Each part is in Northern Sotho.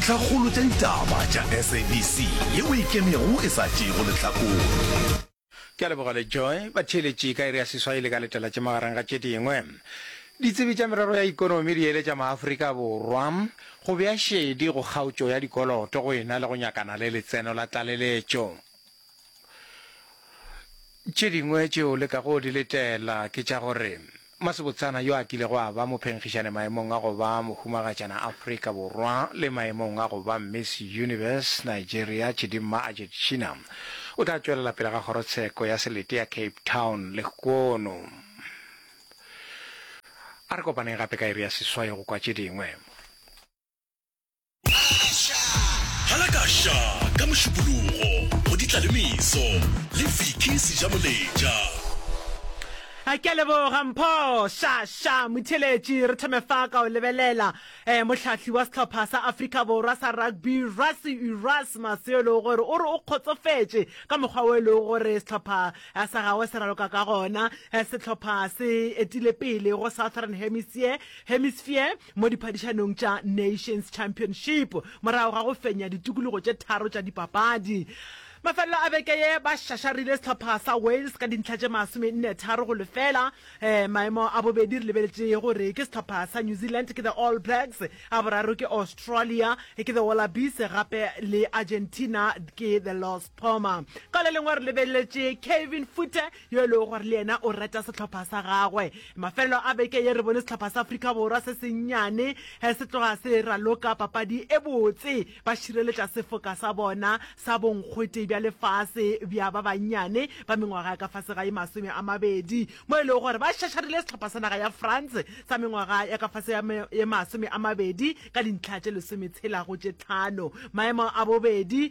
Tlhakgolo tša ditaba tša SABC yeo e ikemego e sa tšeego lehlakore. Ke a leboga le Joy. Batheeletši ka iri ya seswai le ka letalatše magareng ga tše dingwe. Ditsebi tša merero ya ikonomi di eletša maAfrika Borwa go bea šedi go kgaotšo ya dikoloto go ena le go nyakana le letseno la tlaleletšo. Tše dingwe tše o lekago go di letela ke tša gore Masebotsana yo a kilego a ba mophenkgišane maemong a go ba mohumagatšana Afrika Borwa le maemong a go ba Miss Universe Nigeria Chidimma Ajetshina o tla tšwelela pele ga kgorotsheko ya selete ya Cape Town lehono a re kopaneng gape ka iri ya seswai go kwa tše dingwe. Halakasha ka Mošupologo, Moditla le Meso, le Vicky Sejamoletša. Ke a leboga Mpho sha sha Motheletši. Re thome fa ka o lebelela eh, mohlahli wa sehlopha sa Afrika Borwa sa rugby Rassie Erasmus yo e lego gore o re o kgotsofetše ka mokgwa o e lego gore sehlopha eh, sa gagwe se raloka ka gona. Eh, sehlopha se etile pele go Southern Hemisphere, Hemisphere mo diphadišanong tša Nations Championship morago ga go fenya ditukulugo tše tharo tša dipapadi. Mafelelo a beke ye ba šašarile sehlopha sa Wales ka dintlha tše masomenne tharo go lefela. Eh, maemo a bobedi re lebeletše gore ke sehlopha sa New Zealand ke the All Blacks, a boraro ke Australia ke the Wallabies gape le Argentina ke the Los Poma. Ka le lengwe re lebeletše Kevin Foote yo e lego gore le yena o rata sehlopha sa gagwe. Mafelelo a beke ye re bone sehlopha sa Afrika Borwa se sennyane se tloga se raloka papadi e botse ba šireletša sefoka sa bona sa bonkgote bja lefase bja ba bannyane ba mengwaga ya ka fase ga ye masome a mabedi mo e lego gore ba šašarile sehlopha sa naga ya France sa mengwaga ya ka fase ya ye masome a mabedi ka dintlha tše lesometshela go tše tlhano. Maemo a bobedi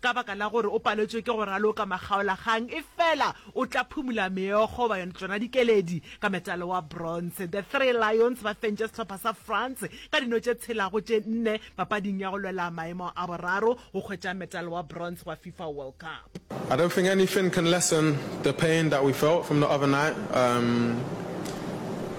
Ka baka la gore o paletšwe ke go raloka makgaolakgang, efela o tla phumula meokgo, ba yona, tšona dikeledi, ka metalo wa bronze. The Three Lions ba fentše sehlopha sa France ka dino tše tshela go tše nne papading ya go lwela maemo a boraro go hwetša metalo wa bronze wa FIFA World Cup. I don't think anything can lessen the pain that we felt from the other night. Um.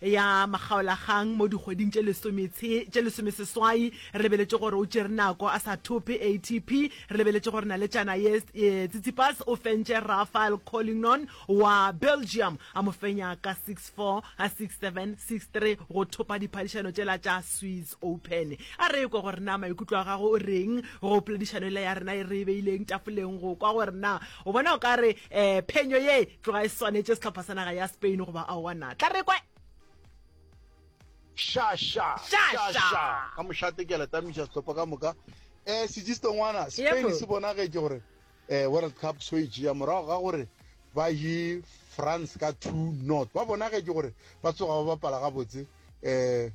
ya makgaolakgang mo dikgweding tše lesome tshe, tše lesomeseswai. Re lebeletše gore o tšere nako a sa thope ATP. Re lebeletše gore naletšana ye, e, Tsitsipas o fentše Rafael Collignon wa Belgium, a mo fenya ka six, four, a six, seven, six, three go thopa diphadišano tšela tša Swiss Open. A re ekwe gore na maikutlo a gago o reng go poledišano yela ya rena ye re e beileng tafoleng go kwa gore na o bona o ka re, um, phenyo ye tloga e swanetše sehlopha sa naga ya spain goba aowa na tla re kwa shasha shasha ka mošate ke a letamiša sehlopha ka moka um sejiste ngwana spain se bonagetše gore um world cup so e jea morago ga gore ba ye france ka two not ba bonagetše gore ba tsoga ba bapala gabotse um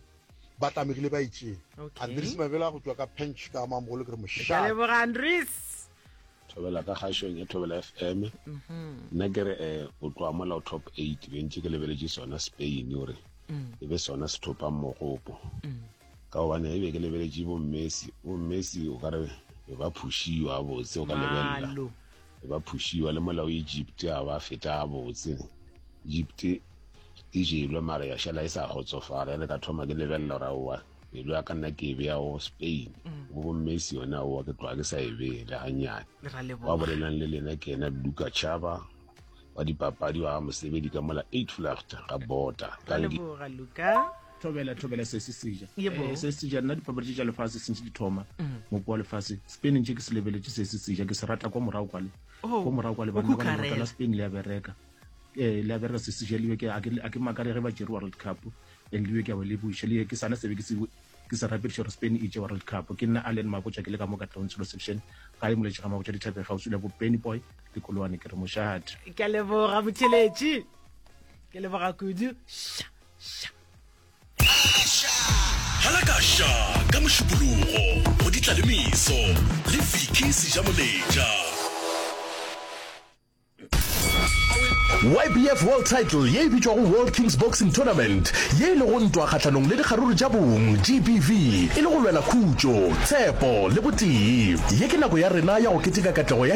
ba tlamegile ba itseng andres mabela go tswa ka pench ka mamogolo ke re mošaleboga andres Thobela ka kgašong ya Thobela FM. Nna ke re eh, o tloa mola o top eight be ntše ke lebeletše sona Spain o re e be sona se thopang mogopo ka gobane e be ke lebeletše bo Messi bo Messi o ka re be ba phušiwa a botse o ka lebelela Malo. be ba phušiwa le mola o Egypt a ba feta a botse Egypt e jelwe mara ya šala e sa kgotsofala ya le ka thoma ke lebelela gore aowa pelo ya ka nna ke e beya o spain mm. bo bommesi yona owa ke tloga ke sa e bee le ganyane ba bolelang le lena ke ena luka chaba wa dipapadi wa mosebedi ka mola eight flacht ga bota thobela thobela se se seja eh, se se seja nna dipapadi tse tša lefatshe sentse di thoma mm. mopo wa lefatshe spain ntse ke se lebeletse se se seja ke se rata kwa morago kwale oh, kwa morago kwale banna spain le ya bereka um le ya bereka se seja libe a ke makare ge ba jere world cup And le yo ke a o leboiša, le ke sana se be ke se ke se rapediša gore Spain e tše World Cup. Ke nna Allen Mabotja ke le ka mo Katlehong Tshilo Section, gae moletše ga Mabotja Dithabeng kgauswi le bo Benny Boy le Koloane. Ke re mošate. Ke a leboga motheletši. Ke leboga kudu. Sha sha. Halakasha ka mošupologo go ditla le meso le Vicky Sejamoletša. YBF World Title ye e bitšwago World Kings Boxing Tournament ye e lego ntwa kgahlanong le dikgaruru tša bong, GBV, e le go lwela khutšo, tshepo le botee. Ye ke nako ya rena ya go keteka katlego ya